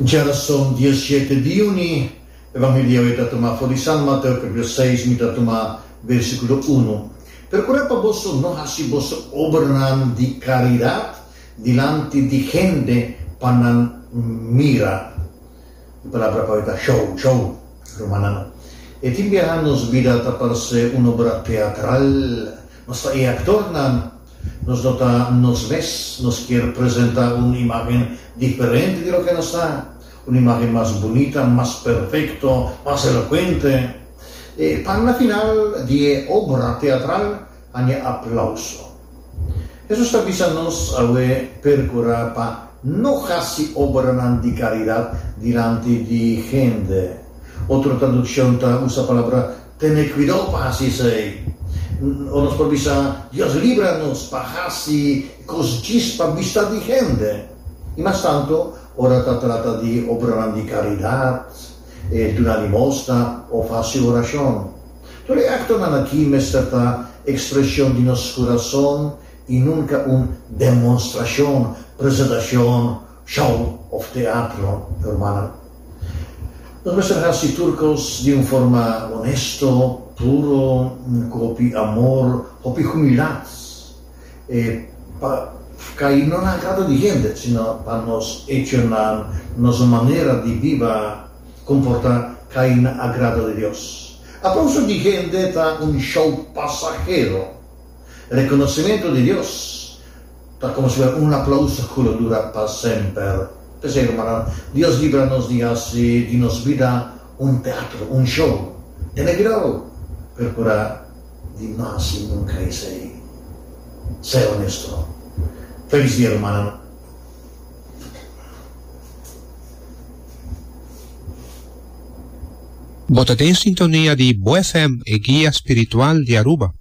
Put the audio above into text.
Djarason dia y siete di juni, e van hidi awe ta tuma for di San Mateo capitulo seis, mi ta tuma versiculo uno, Percura pa boso no haci boso obranan di caridad dilanti di hende pa nan mira. E palabra pa awe ta show, show, rumannan. E tin biaha nos bida ta parce un obra teatral, nos ta e actornan. Nos no ta nos mes. Nos kier presenta un imagen diferente di loke nos ta, un imagen mas bunita, mas perfekto, mas elokuente. E pan na final di e obra teatral haña aplauso. Hesus ta bisa nos awe perkurá pa no hasi obranan di karidat dilanti di hende. Otro tradukshon ta usa palabra Tene cuidao pa haci esey. Ora nos por bisa, Dios libra nos pa haci cos djis pa bista di hende. I mas tanto ora ta trata di obranan di caridad, duna limosna of haci oracion. Tur e actonan aki mester ta expresion di nos curazon i nunca un demonstracion, presentacion, Show of teatro, hermana. Nos mester haci tur cos di un forma honesto, puro, cu hopi amor, hopi humildad. E pa cai no na agrado di hende, sino pa nos hechonan, nos manera di biba, comporta, cai na agrado di Dios. Aplauso di hende ta un show pasahero. Reconocimento di Dios. ta considerá un aplauso cu lo dura pa semper. P'esei, hermana, Dios libra nos di haci di nos bida un teatro, un show. Tene cuidao! Percurá di no haci nunca esei. Sea honesto. Feliz dia, hermana. Bo ta den sintonia di Bo FM, e guia spiritual di Aruba.